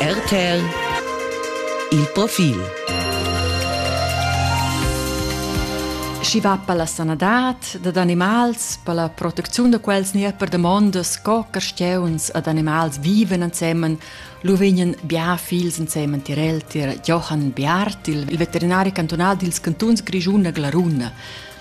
RTL Il profil Schi va per la sanadad dad animals, per la protecziun da quels nia per damondas co carstieuns ad animals viven ensemen, lu vegnan bia fils ensemen tirel tir Johann Biart, il veterinari cantonal dils cantuns Grischun e Glaruna.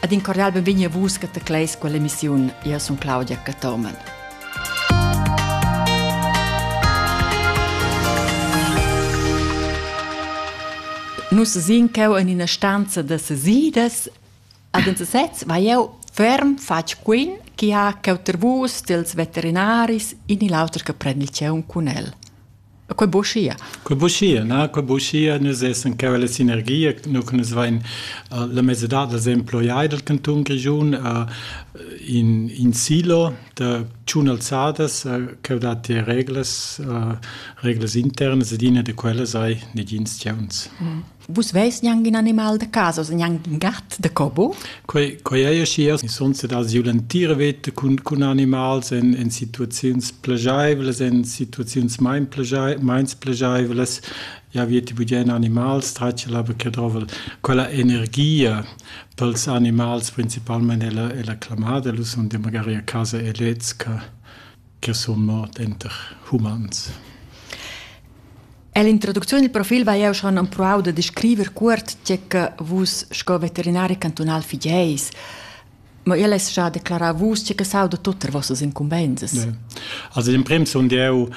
Ed in cordial benvegni a vus che tecleis quell'emissiun. Io sun Claudia Cathomen. Nus sin cheu en ina stanza da sesidas ad en sesez va jeu ferm fatg quin chi ha cheu ter vus dels veterinaris in il auter che prend il tgeun cun el. Quei buschia. Quei buschia, na, quei buschia, nus essan cheu la sinergia, nus nus vein uh, la mesadad dels emploiai del canton Grischun uh, in, in silo de tschun alzadas uh, cheu dat die reglas, uh, reglas internas ed ina de quellas ei negins tgeuns. Mm. Vus veis gnanc in animal da casa, oz gnanc in gat da cobo? Quei, quei ei aschia, sonse da siu l'entira veta cun, cun animals en, en situaziuns plegeivlas, en situaziuns mein meins plegeivlas, ja veti bugien animals, tratge la che drovel quella energia pels animals principalmente è la, è la clamada, lu son de magari a casa e lez che che sun mort enter humans. Ell'introducziun dil profil vai jeu schon empruau da descriver cuort tge che vus sco veterinari cantunal figeis. Ma el es già declarà vus tge che sauda tut er vossas incumbensas. Ja. Also in prim sun eu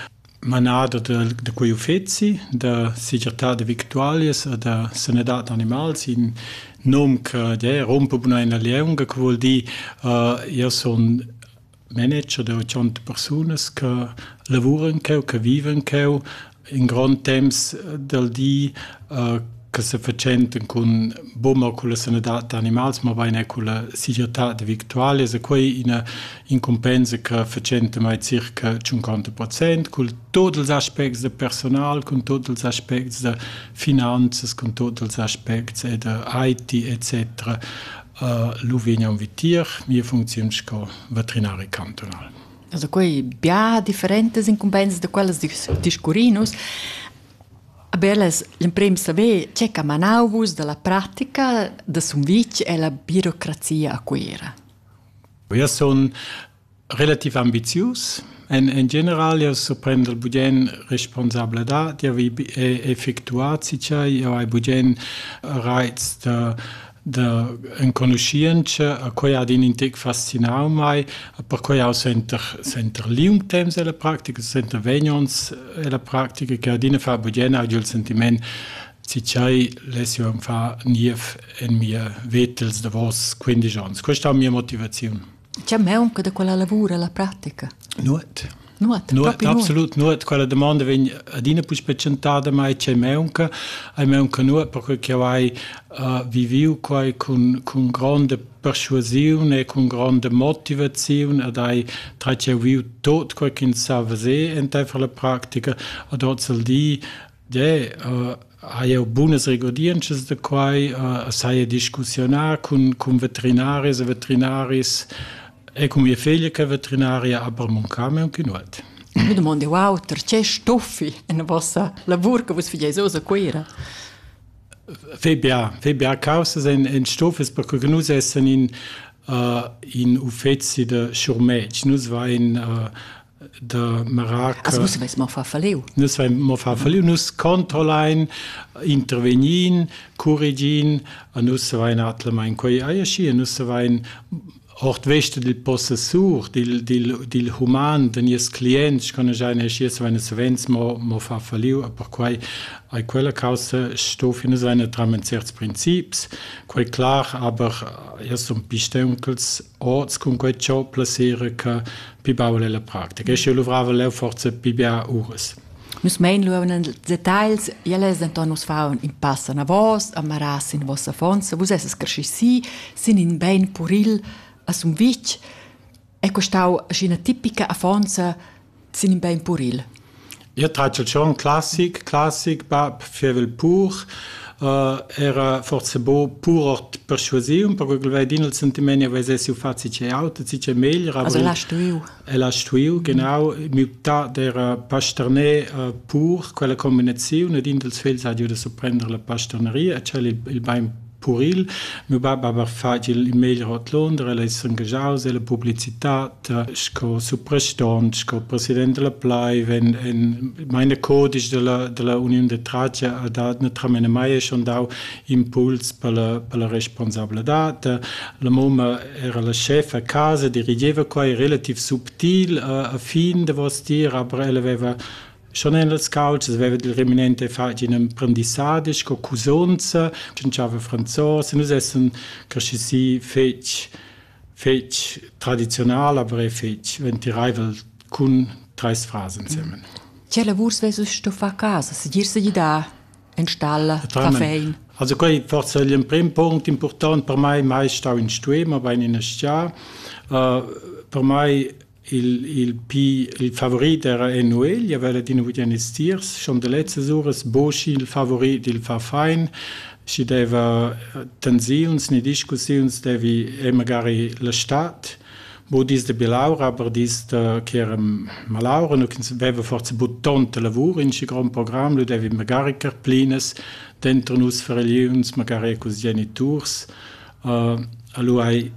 manader de, de quei uffeci da segirtà de victualias e da sanadad animals in nom che ja, rompe buna in la leonga, che vuol dir uh, io sun manager da 80 persunas che lavuran cheu, che vivan cheu in grond temps del di, eh, che se fatschenten cun bummer culla sanadad da animals, mabain er culla segirtad victualias e quei ina incumpensa che fatschenta mai circa 50% cul tot ils aspects de personal, con tot ils aspects de finanzas, con tot ils aspects e de IT etc. lu vegnan vitier mia funcziun sco veterinari cantunal. Also quei bia differentas incumbensas da quellas discurrin nus. Aber las l'emprim saver tge che manau vus dalla pratica da Sumvitg e la birocrazia a Cuira. Eu sun Relativ ambizius èn en general jau surprender bugen responsabladad d'avair effectuà tgei jau hai bugen raits da da enconuschientscha. Quei ha in intec fascinau mei. Perquei jau senter senter liung temps ella practica, senter vegn onns ella practica che adina fa bugen agl il sentiment tgei less jeu far niev en mia veta ils davos quindisch onns. Questa è mia motivaziun. Tgei maunca da quella lavur alla pratica? Nuot. Nuot, nuot absolut nuot. Quella domanda vegn adina puspè tschentada, mai tgei maunca. Ei maunca nuot perché che hai uh, viviu quai cun, cun grande persuasiun e cun grande motivaziun ed hai tratg viu tot quei ch'ins sa fazer enteifer la pratica. Ad oz al di Deh, hai jeu bunas regurdientschas da quai, a saja discussiunà cun cun veterinaris e veterinaris e cun mia figlia che è veterinaria, aber mancà mei aunc in uot. Mi domond jeu auter, tge stuffi en vossa lavur che vus fageis oz a Cuira? Fai bia, fai bia causas en, en stuffes, perché nus essan in, uh, in uffeci da schurmetg. Nus vain uh, de mirac nus vein mo far falliu nus controllein intervegnin curigin a nus vein atlemain quei aiesci e nus vein ort veste dil possessur dil dil dil human den ies clients kann ich eine schies wenn es wenns mo mo fa falliu per quei ai quella causa sto fine seine tramen certs princips quei klar aber erst um pistenkels orts con quei ciò placere che pi baul ella practica. E sche luvrava leu forza pi bia uras. Nus mein lu en details, elles denton nus faun in pass anavos, amaras in vossa fonza, vus esses cresci si, sin in bein puril a Sumvitg, è costau aschi ina tipica affonza sin in bein puril. Jeu tratgel schon classic, classic bab fievel pur, era forsa buca pur ord perschuasiun, perquei ch'el vein il sentiment che veis siu fazi tgei auter, tgi ch'ei meglier. Also el ha stuiu. El ha stuiu, genau, mutar d'era pasterner pur, quella combinaziun ed in dals fegls ha giu da surprender la pasterneria e tschel il bein puril. Miu bab hava fatg il meglier ord Londra, el ei s'engaschaus ella publicitad sco suprastant, sco president della Plaiv. En, en meine codisch della, della Uniun de Tracia ha dat naturalmente mai schon dau impuls per la, per la responsabladad. La mamma era la chef a casa, dirigeva qua, relativ subtil a, a fin davos dir, aber ella aveva Schon en las couchas veva il reminente fatg in emprendissadi sco cusonza, tschintschava franzos, e nus essan cresci si fetg, fetg tradizional, aber è fetg ventiraivel cun treis fras ensemen. Che lavurs vesus sto far casa, segir se gidar, en stalla, cafein? Also quei forse è l'emprim punct important per mai, mai stau in stuem, aber in ina stia. Uh, per mai Il, il pi il favorit era Enuegl, aveva adina vugì estiers, chandelezzas uras, Boci il favorit, il fa fain, schi deva eh, tensiuns ni discussiuns devi e magari la stad, bo dis de bilaura, aber dis de che era malaura, nu ch'ins veva forza but tonta lavur in schi grand program, lu devi magari carplines, dentro nus fareliuns, magari cus geniturs, uh, eh, allora hai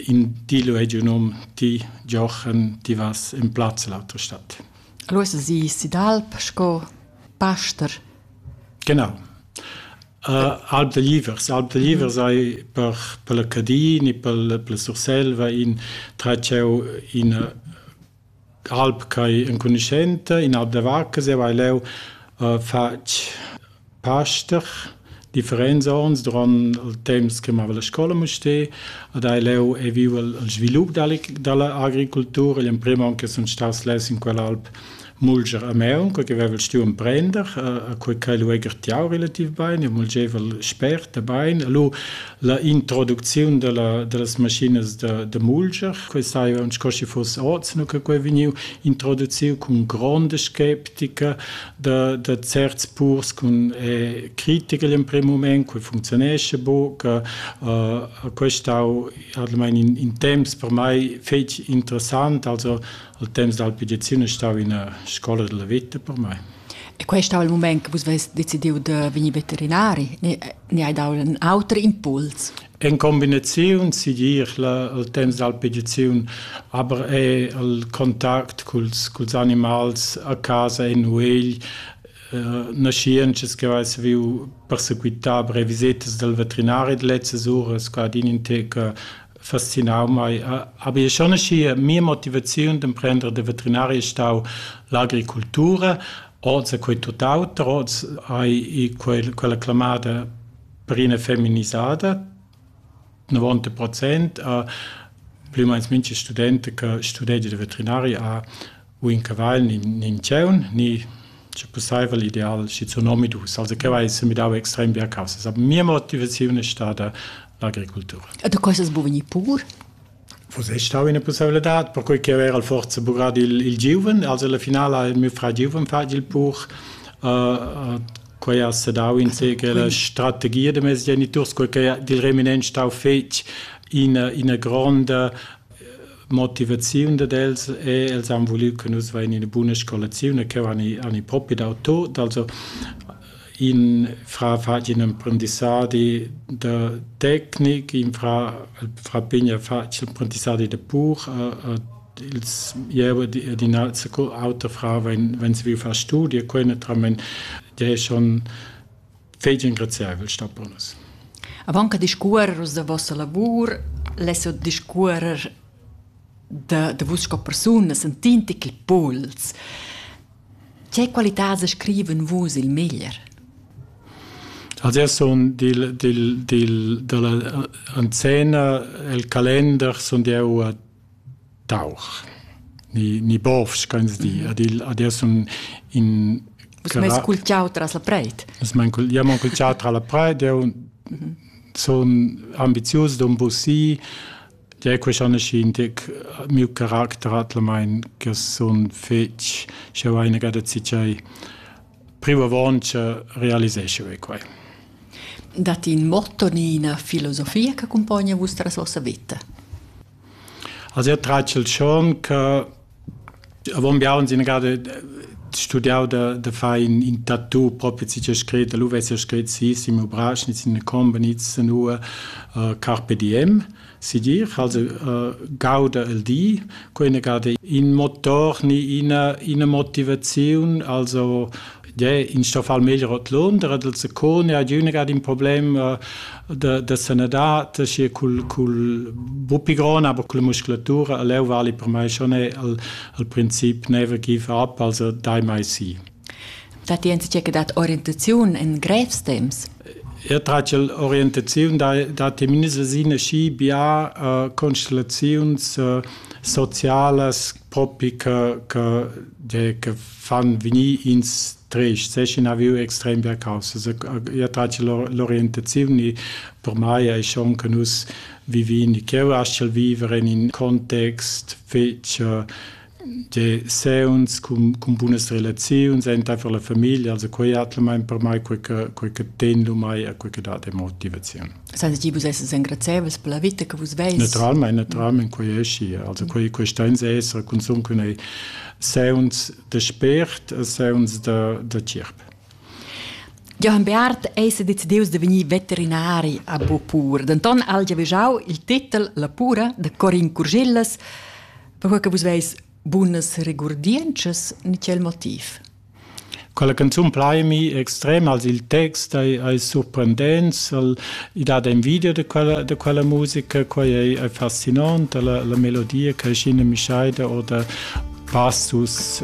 in ti lu hagi num ti Giochen ti vas in plaz l'autra stadt. Allora si Sidalp sco paster. Genau. Uh, Alp de Livers. Alp de Livers ei per, per la Cadin e per, per la Surselva in tratschau ina Alp ch'ei enconuschenta, ina aut da vacca, zieva hai leu fatg paster differents onns duront il temps che mava la scola a Mustér ed hai leu ei viu il svilup dalla dalla agricultura. Igl emprem onn che sun staus less in quell'alp mulger a Meun, quei che vevel stuiu emprender, e quei ch'ei lu egertiau relativ bein, io mulgeva spert e bein. E lu La introducziun dalla, dallas maschinas da, da mulger, quei sai aunc sco schi fuss oz, nu che quei vegniu introduciu cun gronda skeptica da, da certs purs cun eh, critical in prim moment, quei funzionesce buca, uh, questa stau almain in, in temps per mai fetg interessant, also al temps dal pedizione stau in una scuola della vita per me. E questo è il momento che vos avete deciso di venire veterinari? E, ni hai dau in auter impuls. En combinaziun sigir la, il temps d'alpediziun, aber è il contact culs, culs animals a casa en uegl uh, naschientschas che vai viu persequitar brevisitas del veterinari letztes uras qua din in teca fascinau mai. Aber ich schon mia Motivation dem Prender de Veterinari stau l'agricultura, Oz è quei tuttauter. Oz hai quel, quella clamada per ina feminisaida, novanta procent, plü u meins mincha studenta che studegia da veterinaria ha u in cavagl ni nin tgèun, ni sche pussaivel ideal schizun omadus, also che vai semidau extrem bia caussas. Aber mia motivaziun è stada l'agricultura. E da quei sas buca vegnir pur? Vus es stau üna pussaivladad perquai ch'eu era forsa bugrà il il giuven. Also alla finala ha mio frar giuven fatg il pur. quai ha sedau insegner la strategia da meis geniturs, cur ch'ei dil reminent stau fetg ina ina gronda motivaziun dad els e els han vuliu che nus vain ina buna scolaziun e cheu han i han i propi dau tot. Also in fra fatg in emprendissadi da tecnic, in fra fra pigna fatg emprendissadi da pur a ils jeu ed in alter auter fra vegn vegn saviu far studi e quei naturalmein dei schon fetg engraziavel sta bonus. Avant che discuorer da vossa lavur, less discuorer da, da vus sco persuna sentin ti ch'il puls. Tge qualitad sa scriven vus il meglier? Also er sun dil, dil, dil, dalla anzena el calender sun eu a tauch. Ni, ni bovs, kannst di. Mhm. Ad il, ad el sun in... Vus m'hai scultiau tras la preit. Vus m'hai scultiau tra la preit, eu mhm. sun ambizius d'un bussi, Ja, quest an es indic miu caracter atlamaing che sun fich sch'eu haina gada tgiei privo avaunt cha realisescho eu quai. Datti ün motto ni üna filosofia che accumpogna vostra vossa vita? Also io traccio il schon che Avon biaun sin gada studiau da da far in in tattoo propi tgi ch'ha scret, lu vess jeu scret si Simo Brasch, niz in combra, niz zanua carpe diem, segir, also gauda el di, quei ina gada in motor ni ina ina motivaziun, also Tgei in sto far meglier ordlunder, dal secone ad üna ad in problem uh, da, da sanadad, schi cul, cul bupigon, aber cul musculatura, leu vali per mai schon al, al princip never give up, also die mai si. Dat die ensiche che dat orientaziun in grevstems? Er traccia orientaziun da, da teminisa sine schi bia uh, constellaziuns uh, socialas propi che, che, de, che fan venir ins trist, sechen haviu extrem bia causas. Io trace l'orientazione per mai è schon che nus vivin, ch'eu astgel vivere in un context fece de se uns con, con bunas relazioni enta per la famiglia, also quei atla mein per mai quei che quei che ten lu mai e quei che dà de motivazione. Sens ti vus essas engrazieivels per la vita che vus veis? Naturalmein, naturalmein quei ei schi. Also quei questa ins esser consum cun ei sauns de spért e sauns de de cirp. Johann Beat eis decideus de vegnir veterinari a Bopur. Denton ha el già vigiau il titel La pura de Corin Curgillas, per che vus veis bunas regurdientschas ni quel motiv. Quella canzun plaimi extrem als il text ei, ei surprendents, el, i dat envidia da quella, da quella musica, quei ei, ei fascinant, la, la melodia che scina mischeida oder passus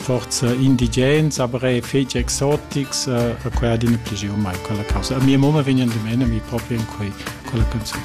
forza indigens, aber è fetg exotics, a quei adina pigliu mai quella causa. A mia mamma vegnan de mena mi proprio in quei, quella canzun.